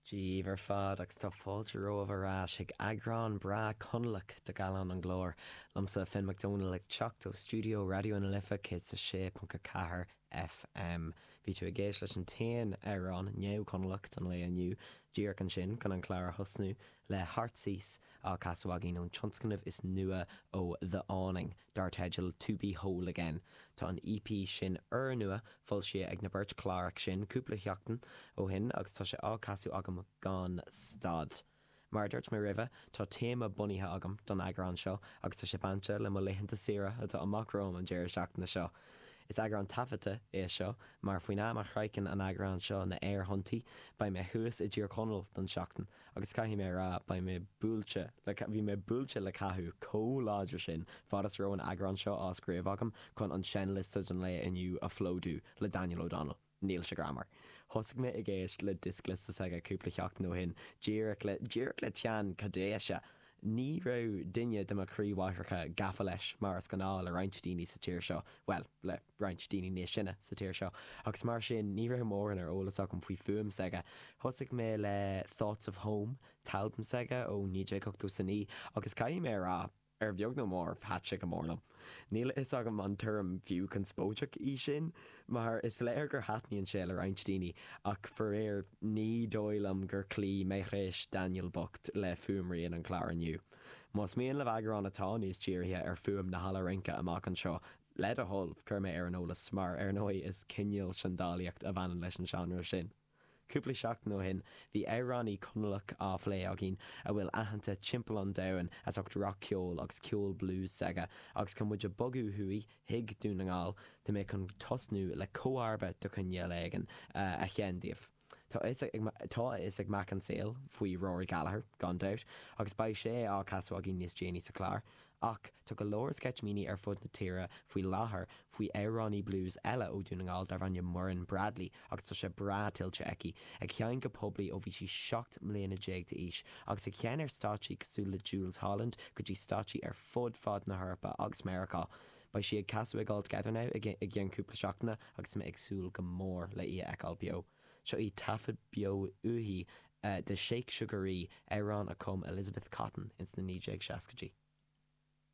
Daoibh ar fad agus tá fáilte romhaibh ar ais chuig eagrán breá Conallach de Gallán an Ghlóir, liomsa, Finn Mac Domhnaill, ag teacht ó stiúideo Raidió na Life 106.4 FM. Bhí tú ag éist leis an t-aon amhrán neamh-Chonallach don lae inniu, díreach ansin chun an clár a thosnú, le Heartsease á casadh againn ón tionscnamh is nua ó The Awning. dar teideal To Be Whole Again. Tá an EP sin úrnua foilsithe ag na beirt Cláraigh sinn cúpla sheachtain ó shin agus tá sé á casadh agam gan stad. Mar a dúirt mé roimhe, tá téama bunaithe agam don eagrán seo agus tá sé bainte le mo laethanta saoire atá amach romham an deireadh seachtaine seo. Is eagrán taifeadta é seo mar faoin am a shroicheann an eagrán seo na aerthonntaí beidh mé thuas i dTír Chonaill don tseachtain Agus caithfidh mé a rá, beidh mé buailte le, bhí mé buailte le cathú comh láidir sin, fad is a raibh an eagrán seo á scríobh agam, chun an seinnliosta don lae inniu a phlódú le Daniel O'Donnell. Níl sé greannmhar. Thosaigh mé ag éist le dioscliosta s'aige cúpla sheachtain ó shin, díreach le, díreach le teann caidéise. Ní raibh duine de mo chroí-mháithreacha gafa leis mar is ghnáth le roinnt daoine sa tír seo, bhuel, le, roinnt daoine níos sine sa tír seo agus mar sin ní raibh mórán ar eolas agam faoi fuaim s'aige. Thosaigh mé le Thoughts of Home, t-albam s'aige ó 1989 agus caithfidh mé a rá, ar bheag nó mór, thaitin sé go mór liom. Níl a fhios agam an tuairim fiú conspóideach í sin mar is léir gur thaitníonn sé le roinnt daoine ach faraor ní dóigh liom gur chloígh meidhréis Daniel bocht le fuaimrian an chláir inniu. Más mian libh eagrán atá níos dírithe ar fuaim na halla rince amach anseo, Le do thoil, cuir mé ar an eolas, mar ar ndóigh is cineál seandálaíocht a bhaineann leis an seánra sin. Cúpla seachtain ó shin bhí amhránaí Conallach á phlé againn a bhfuil aitheanta timpeall an domhain as ucht rac-cheol agus ceol blues s'aige agus chun muid a bogadh thuaidh chuig Dún na nGall tá mé chun tosnú le comharba de chineál éigin a sheinn daoibh. Tá a fhios ag mac an tsaoil faoi Rory Gallagher, gan dabht, agus beidh sé á chasadh againn níos déanaí sa chlár, ach tá go leor sceitimíní ar fud na tíre faoi láthair faoi amhránaí blues eile ó Dhún na nGall darb ainm Muireann Bradley agus tá sé breá tuillte aici, ag sheinn go poiblí ó bhí sí seacht mbliana déag d'aois, agus ag sheinn ar stáitsí cosúil le Jools Holland go dtí stáitsí ar fud fad na hEorpa agus Meiriceá. Beidh sí ag casadh ag All Together Now i gceann cúpla seachtaine agus mé ag súil go mór le í a fheiceáil beo. Seo í taifead beo uaithi de Shake Sugaree, amhrán a chum Elizabeth Cotten ins na 1960idí.